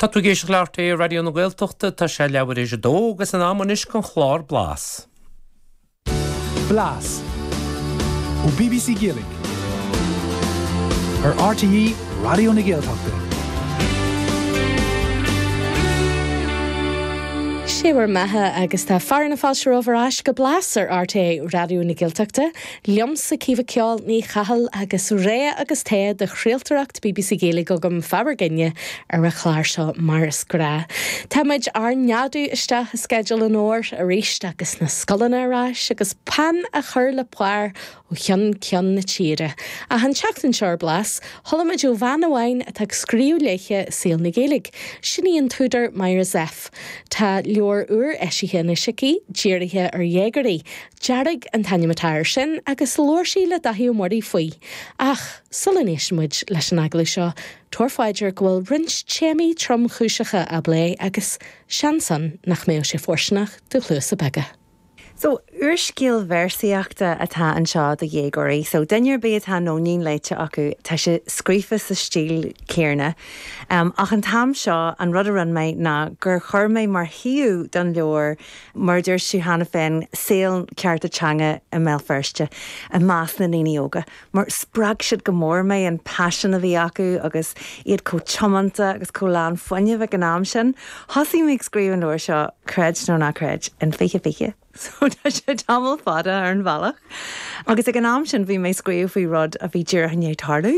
Tá tú ag éisteacht le RTÉ Raidió na Gaeltachta, tá sé leathuair tar éis a dó agus in am anois don chlár Blas. Blas. Ó bbc Gaeilge. Ar RTÉ Raidió na Gaeltachta. Sé bhur mbeatha agus tá fearadh na fáilte romhaibh ar ais go Blas ar RTÉ Raidió na Gaeltachta. Liomsa Caoimhe 'Ceol' Ní Chathail agus rogha agus togha de chraoltóireacht bbc Gaeilge agam, fá bhur gcoinne ar an chlár seo mar is gnách. Tá muid ár neadú isteach i sceideal an fhómhair arís agus na scoileanna ar ais agus peann á chur le pár ó cheann ceann na tíre. Ach an tseachtain seo ar Blas, chuala muid ó bhean amháin atá ag scríobh léithe i saol na Gaeilge, sin í an t-údar Myra Zepf. Tá leabhar úr eisithe anois aici, dírithe ar dhéagóirí, Dearg an t-ainm atá air sin agus labhair sí le Dáithí Ó Muirí faoi. Ach, sula n-éisteann muid leis an agallamh seo, tabhair faoi deara go bhfuil roinnt téamaí tromchúiseacha á bplé agus seans ann nach mbeadh sé fóirsteanach do chluasa beaga. So, úrscéal véarsaíochta atá anseo do dhéagóirí. So, duine ar bith atá Nóinín léite acu, tá sé scríofa sa stíl chéarna. Ach an t-am seo, an rud a rinne mé ná gur chuir mé mar shuíomh don leabhar mar a dúirt sí cheana féin, saol na cearta teanga i mBéal Feirste i measc na ndaoine óga mar spreag siad go mór mé, an paisean a bhí acu agus iad chomh tiomanta agus chomh lán fuinnimh ag an am sin. Thosaigh mé ag scríobh an leabhair seo, creid nó ná creid, in 2020, so tá sé tamall fada ar an bhealach agus ag an am sin bhí mé ag scríobh faoi rud a bhí díreach i ndiaidh tarlú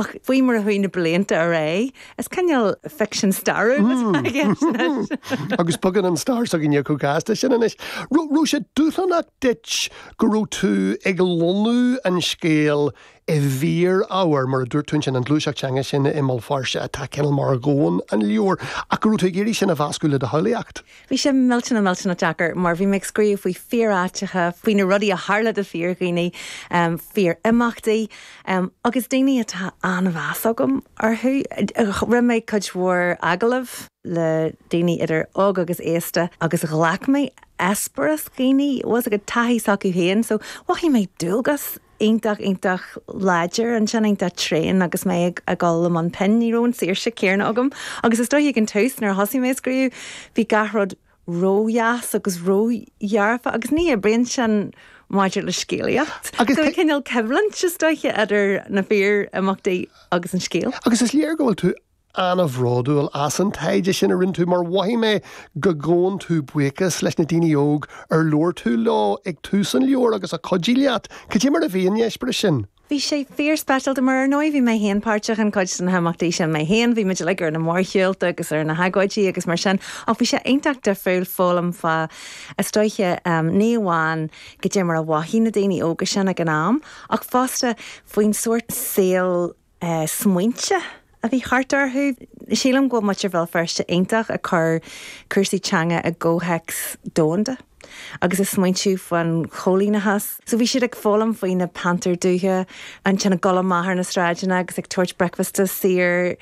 ach faoi mar a chuaigh na blianta ar aghaidh, Is cineál ficsean stairiúil atá i gceist anois. Agus bogann an stair s'againne chomh gasta sin anois. Raibh sé dúshlánach duit go raibh tú ag lonnú an scéil i bhfíor-ábhar, mar a dúirt tú ansin, an ghluaiseacht teanga sin i mBéal Feirste atá cineál mar dhomhan an leabhair, ach go raibh tú ag iarraidh sin a mheascadh le do shamhlaíocht? Bhí sé millteanach, millteanach deacair mar bhí mé ag scríobh faoi fíor-áiteacha, faoi na rudaí a tharla do fíor-dhaoine, fíor-imeachtaí agus daoine atá an-mheas agam orthu. Rinne mé cuid mhór agallamh le daoine idir óg agus aosta agus ghlac mé eispéireas daoine, bhfuil a fhios agat, taithí s'acu féin, so mhothaigh mé dualgas iontach, iontach láidir ansin, iontach tréan agus mé ag dul i mbun pinn. Ní raibh an saoirse céanna agam agus is dóiche ag an tús nuair a thosaigh mé ag scríobh, bhí gach rud ródheas agus ródhearfa agus ní oibríonn sin maidir le scéalaíocht. Agus tá cineál coimhlint, is dóiche, idir na fíor-imeachtaí agus an scéal. Agus is léir go bhfuil tú an-bhródúil as an taighde sin a rinne tú mar mhothaigh mé go gabhann tú buíochas leis na daoine óg ar labhair tú leo ag tús an leabhair agus a chuidigh leat. Cad é mar a bhí an eispéireas sin? Bhí sé fíorspeisialta mar, ar ndóigh, bhí mé féin páirteach in cuid de na himeachtaí sin mé féin, bhí muid uilig ar na mórshiúlta agus ar na hagóidí agus mar sin ach bhí sé iontach difriúil foghlaim fá, is dóiche, ní amháin cad é mar a mhothaigh na daoine óga sin ag an am ach fosta faoin sórt saoil a de smaointe a bhí thart orthu. Sílim go bhfuil muintir Bhéal Feirste iontach ag cur cúrsaí teanga i gcomhthéacs domhanda agus ag smaointiú faoin choilíneachas. So bhí siad ag foghlaim faoi na Pantair Dubha ansin ag dul amach ar na sráideanna agus ag tabhairt bricfeasta saor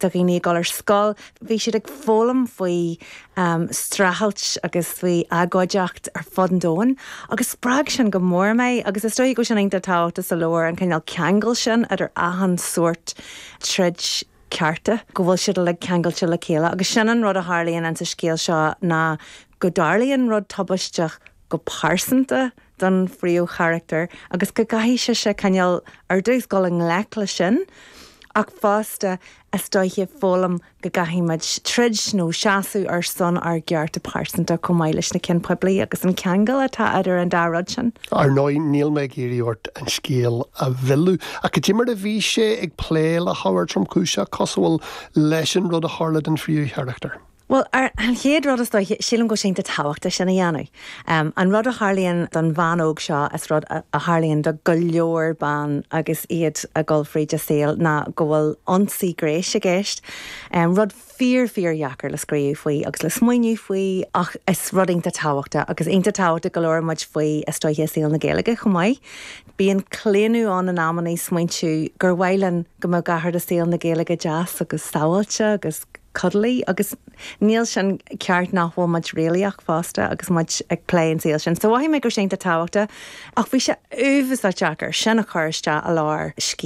do dhaoine ag dul ar scoil. Bhí siad ag foghlaim faoi streachailt agus faoi agóideacht ar fud an domhain agus spreag sin go mór mé agus is dóiche go bhfuil sin iontach tábhachtach sa leabhar, an cineál ceangal sin idir achan sórt troid cearta, go bhfuil siad uilig ceangailte le chéile agus sin an rud a tharlaíonn in sa scéal seo ná go dtarlaíonn rud tubaisteach go pearsanta don phríomhcharachtar agus go gcaithfidh sise cineál, ar dtús, dul i ngleic leis sin ach fosta, is dóiche, foghlaim go gcaithfidh muid troid nó seasamh ar son ár gcearta pearsanta chomh maith leis na cinn poiblí agus an ceangal atá idir an dá rud sin. Ar ndóigh, níl mé ag iarraidh ort an scéal a mhilleadh, ach cad é mar a bhí sé ag plé le hábhar tromchúiseach cosúil leis an rud a tharla don phríomhcharachtar, Bhuel, an chéad rud is dóiche, sílim go bhfuil sé iontach tábhachtach sin a dhéanamh. An rud a tharlaíonn don bhean óg seo is rud a tharlaíonn do go leor ban agus iad ag dul fríd a saol ná go bhfuil ionsaí gnéis i gceist. Rud fíor fíor dheacair le scríobh faoi agus le smaoineamh faoi ach rud iontach tábhachtach agus iontach tábhachtach go labhrann muid faoi is dóiche i saol na Gaeilge chomh maith. Bíonn claonadh ann amannaí smaointiú gur mhaith linn go mbeadh gach rud i saol na Gaeilge deas agus sabháilte agus cuddly agus níl sin ceart mura bhfuil muid réalaíoch fosta agus muid ag plé an saol sin. So mhothaigh mé go raibh sé iontach tábhachtach ach bhí sé uafásach deacair sin a chur isteach i lár scéil.